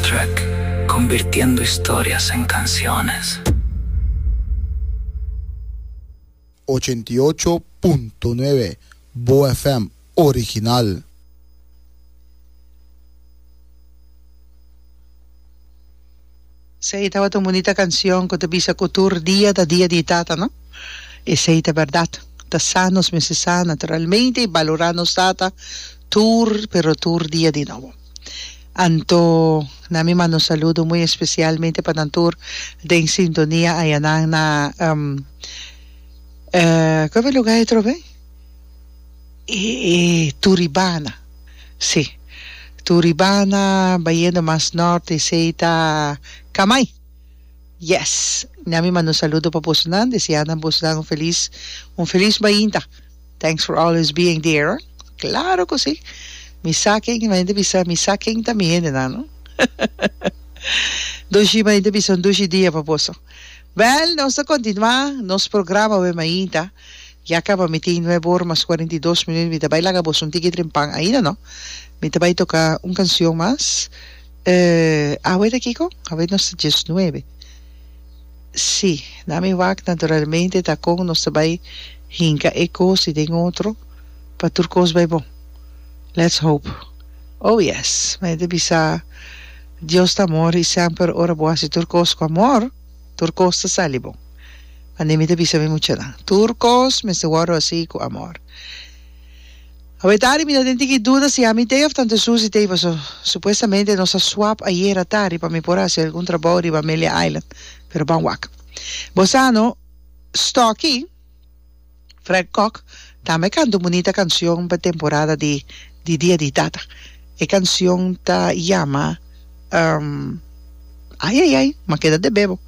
Soundtrack, Convirtiendo historias en canciones. Ochenta i ocho punto nuebe Boa FM original. Esey tabata un bunita cancion cu ta bisa cu tur dia ta dia di Tata, no? Esey ta berdad. Ta sa nos mester sa naturalmente y balora nos Tata tur pero tur dia di nobo. Anto na mi manda un saludo muy especial mente pa nan tur den sintonia ayanan na um cu ebe lugar e trobe? Turibana si Turibana bayendo mas norte esey ta Camay yes na mi manda un saludo pa boso nan deseanan boso nan un feliz un feliz bainta. Thanks for always being there Claro cu si Mi sa ken y mi hende bisa mi sa ken ta mi hende nan no Dushi y mi hende bisa un dushi dia pa boso Wel nos ta continua nos programa awe mainta Ya caba mi tin nuebe ora mas cuarenta y dos minuut mi ta bay laga boso un tiki dren pan ainda no Mi ta bay toca un cancion mas eh awe ta kico awe nos ta dies nuebe. Sí, na mi wak naturalmente ta kon nos ta bai hinka e kos i den otro pa tur kos bai bon. Let's hope. Oh yes, mi a yete bisa, Dios ta amor i semper ora bo hasi tur kos ku amor, tur kos ta sali bon. Mane mi ta bisa mi muchanan, tur kos mester wòrdu hasi ku amor. Awetari mi ta den tiki duda si ami t'ei of tante Susie t'ei paso supuestamente nos a swap ayera tardi pa mi por a hasi algun trabou riba Amelia Island pero ban wak bo sa no Stocky Fred Kok tambe a canta un bunita cancion pa temporada di di dia di tata e cancion ta yama Ayayay ma keda debebo.